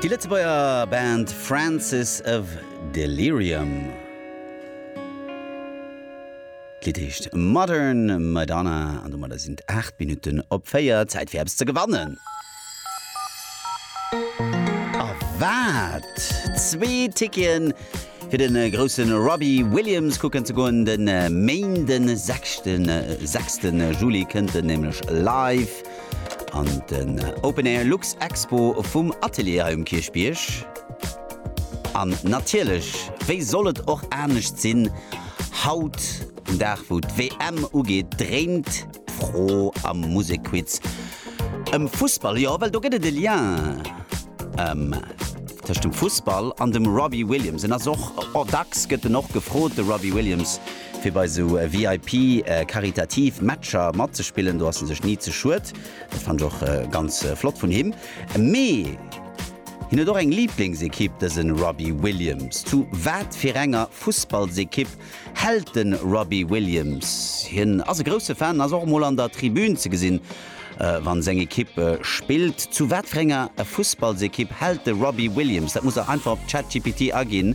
Déi Lëtzebuerger Band Francis of Delirium, d'Lidd heescht Modern Madonna an domadder sinn et 8 Minutten op 4, Zäit fir eppes ze gewannen. A wat? Zwee Ticketen fir de grousse Robbie Williams kucken ze goen, de Méinden, 6 Juli kënnt en nämlech live An den Open Air Lux Expo vum Atelier hei um Kierchbierg. An natierlech, wéi soll et och anescht sinn, haut um Dag wou d'WM ugeet, dréint d'Fro am Musekquiz ëm Fussball. Jo, well do gëtt et e Lien tëscht dem Fussball an dem Robbie Williams. En ass och, dacks gëtt en och gefrot, de Robbie Williams. Fir bei esou VIP karitativ Matcher matzespillen, do ass en sech ni ze schued. Dat fannen ech och ganz flott vun him. Mee hien huet och eng Liblingsekipp, dëse Robbie Williams. Zu wat fir enger Fussballsekipp hält de Robbie Williams? Hien ass e grousse Fan, ass och mol an der Tribün ze gesinn, wa seng Ekipp spillt. Zu wat fir enger Fussballsekipp hält de Robbie Williams? Dat musst der einfach op Chat GPT aginn.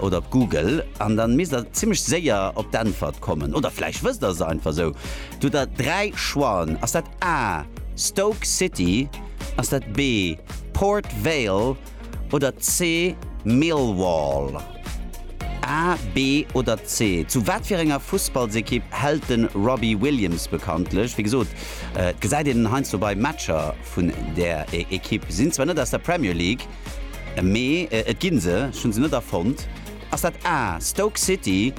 oder op Google an dann misst der zimlech séier op d'Äntwert kommen. Oder vläicht wësst der se einfach esou. Do hutt der dräi Choixen. Ass dat A, Stoke City, ass dat B, Port Vale oder C, Millwall? A, B oder C? Zu wat fir enger Fussballsekipp hält de Robbie Williams bekanntlech? Wéi gesot, et gesäit een en heiansdo bei Matcher vun där Ekipp. Sinn zwar net aus der Premier League. Mee et ginn se, ech hunn se net erfonnt. Ass dat A, Stoke City,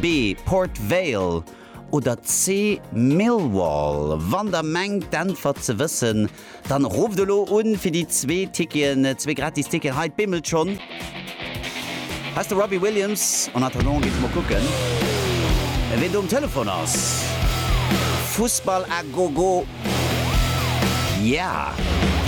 B, Port Vale oder C, Millwall? Wann der mengt d'Äntwert ze wëssen, dann rufft elo un fir déi zwee Ticketen, zwee gratis Ticketen. Hei, et bimmelt schonn. Hei ass de Robbie Williams. En attendant géif mer kucken, ween do um Telefon ass. Fussball à gogo, yeah!